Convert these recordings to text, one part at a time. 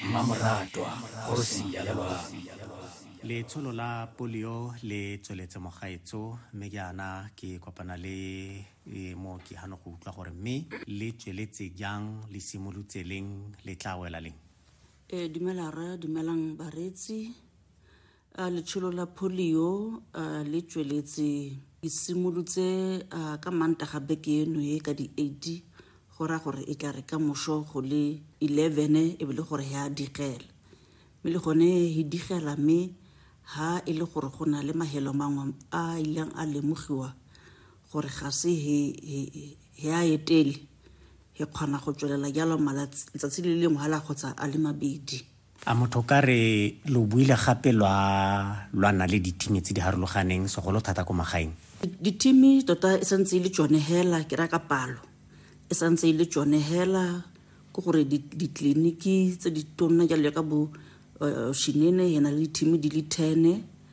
Mmamoratwa kgosi ya Lebami. Letsholo la polio le tsweletse mogaetso mme jaana ke kopana le mooki gano go utlwa gore mme le tsweletse jang le simolotse leng le tla wela leng. Ee, dumela rra, dumelang bareetsi. A letsholo la polio a le tsweletse ke simolotse ka mantaga beke eno e ka di-eighty go raya gore e tla re ka moso go le eleven e be le gore ya digela mme le gone e digela mme ha e le gore go na le mahelo mangwe a ileng a lemogiwa gore ga se he a etele he kgona go tswelela jalo malatsi letsatsi le lengwe hala kgotsa a le mabedi A motho o ka re lo buile gape lwa lwana le ditimi tse di harologaneng segolo thata ko magaeng? Ditimi tota e santse e le tsone hela, ke raya ka palo e santse e le tsone hela ke gore ditleliniki tse di tonna jalo jaaka bo Shinene e na le ditimi di le ten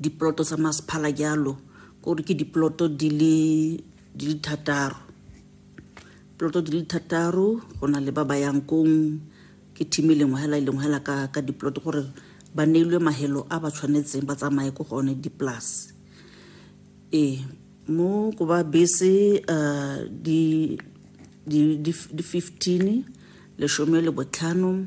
diploto tsa masephala jalo kore ke diploto di le thataro ploto di le thataro go na le ba ba yang kong ke team e lengwe hela e lengwe hela ka, ka diploto gore ba neilwe mahelo a ba tshwanetseng ba tsamaye ko gone dipolase ee mo ko ba bese um di 15 lesome le botlhano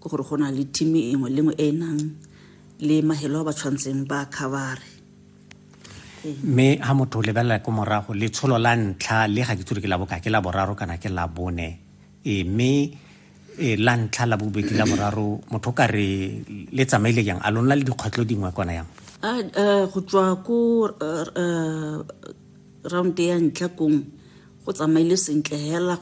ke gore go na le team e nngwe le nngwe e e nang le mahelo a ba tshwantseng ba covere mme ha motho o lebelela ko morago letsholo la ntlha le ga ke tsore ke la boka ke la boraro kana ke la bone e, mme e, la ntlha la bobedi la boraro motho ka re le tsamaile jang a lona le dikgwetlho dingwe kona yang go tswa ko round ya ntlha kong go tsamaile sentle hela